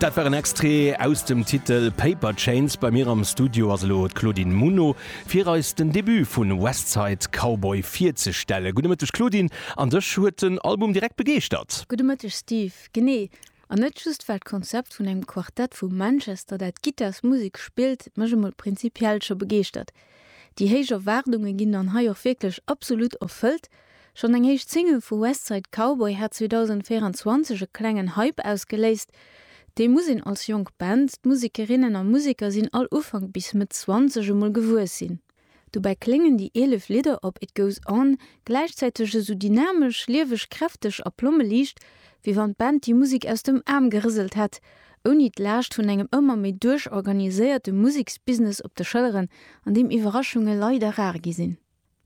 Dat war en Extrait aus dem Titel Paper Chains. Bei mir am Studio ass elo d'Claudine Muno, fir eis den Debut vu West Side Cowboy virzestellen. Gudde Mëtteg Claudine, an dech huet den Album direkt begeeschtert? Gudde Mëtteg Steve, genee. An net just well d'Konzept vun engem Quartett vu Manchester, dat d'Gittarsmusek spillt, mech emol prinzipiell scho begeeschtert. Déi héich Erwaardunge ginn dann hei och wierklech absolut erfëllt, Schonn eng éischt Single vu West Side Cowboy hat 2024 e klengen Hype ausgeléist. Dee muss een als jonk Band, d'Musekerinnen a Museker sinn all Ufank bis Mëtt Zwanzeg, emol gewuess sinn. Dobäi kléngen déi 11 Lidder op It Goes On gläichzäiteg esou dynamesch, lieweg, kräfteg a plommeliicht, wéi wann d'Band déi Musek aus dem Aarm gerëselt hätt, ouni d'Laascht vun engem ëmmer méi duerchorganiséierte Museksbusiness op de Schëlleren, an deem Iwwerraschunge leider rar gi sinn.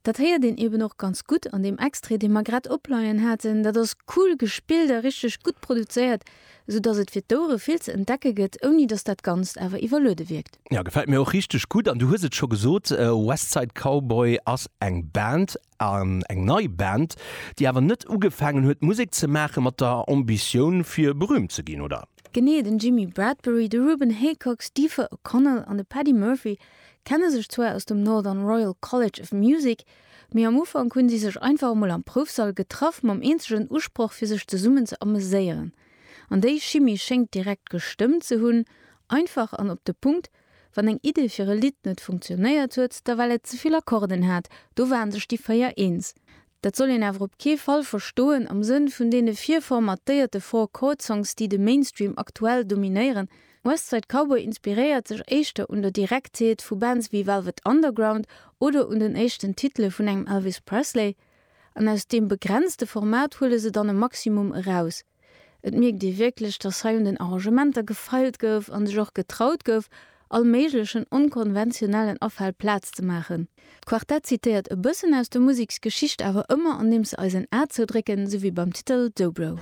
Dat héiert een eben och ganz gutt an deem Extrait, dee mer grad opleien haten. Dat ass cool gespillt a richteg gutt produzéiert, sou dass et fir d'Ouere vill ze entdecke gëtt, ouni dass dat Ganzt awer iwwerluede wierkt. Jo, gefält mir och richteg gutt. An du hues et scho gesot, West Side Cowboy ass eng Band, eng nei Band, déi awer net ugefaangen huet Musek ze maache mat der Ambitioun fir berühmt ze ginn, oder? Genee, den Jimmy Bradbury, de Ruben Haycox, d'Aoife O'Connell an de Paddy Murphy kenne sech zwar aus dem Northern Royal College of Music, mee am Ufank hunn si sech einfach emol am Proufsall getraff mam eenzegen Usproch fir sech zesummen ze ameséieren. An déi Chimie schéngt direkt gestëmmt ze hunn, einfach an op de Punkt, wann eng Idee fir e Lidd net funktionéiert huet, da well et zevill Akkorden hat, do waren sech déi véier eens. Dat soll een awer op kee Fall verstoen am Sënn vun deene virformatéierte Four-Chord-Songs, déi de Mainstream aktuell dominéieren. West Side Cowboy inspiréiert sech éischter un der Direktheet vu Bands ewéi Velvet Underground oder un den éischten Titele vun engem Elvis Presley. An aus deem begrenzte Format huele se dann e Maximum eraus. Et mierkt ee wierklech, dass hei un den Arrangementer gefeilt gouf a sech och getraut gouf, all méiglechen onkonventionellen Afäll Plaz ze maachen. D'Quartett zitéiert e bëssen aus der Museksgeschicht, awer ëmmer andeems se eis en A zoudrécken, sou wéi beim Titel Dobro.